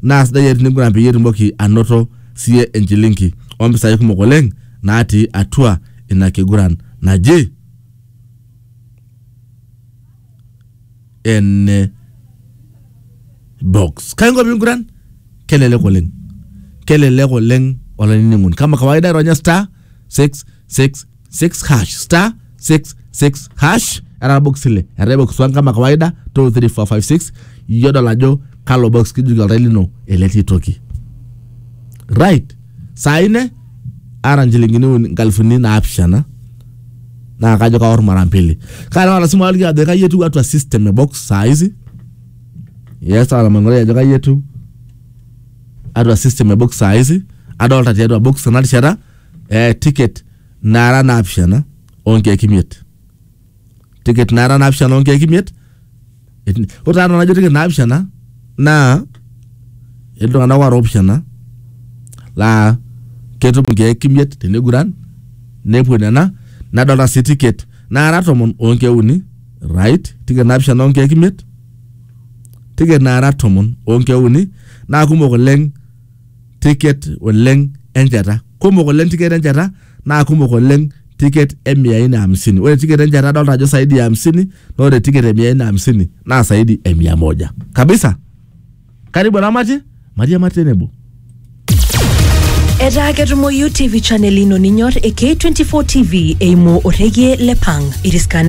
Naa sidai iyie tiniguran peyie itumoki anoto siye enchilinki o mpisai kumok oleng naatii atua ina kiguran naji ene box. Kai inko piinguran? Kelelek oleng. Kelelek oleng olainining'oni. Kama kawaida ironya star, six, six. 6 hash star 66 hash era box ile eetae box one kama kawaida 2 3 4 5 6 iyio dol ajo kalo box kijuki oltau lino eletii toki right saa ine ara nchilingini uni- nkalifuni naapishana naa kajo kaor mara mbili kana wala simu aliki ajo kai etiu atua system e box saa hizi yes ala mangore ajo kai etiu atua system e box saa hizi adolta tiatua box ena rishata eh, ticket naara naapishana onkeek imiet ticket naara naapishana onkeek imiet Eti- ore taata najo ticket naapishana naa iltung'anak oora opishana laa ketum inkeek imiet teneiguran nepuo nena nadolta sii ticket naara tomon onkeek uni right ticket naapishana onkeek imiet ticket naara tomon onkeek uni naa kumok oleng ticket oleng enchata. Kumok oleng ticket enchata naa kumok oleng ticket e mia nne hamsini. Ore ticket enchata adolta ajo saidi ya hamsini naa ore ticket e mia nne hamsini naa saidi ya mia moja kabisa. Karibu eramatie matiamaki tenebo. Etaa ketumoyu TV channel ino ninyor e K24 TV eimu orrekie le Pang. Iriska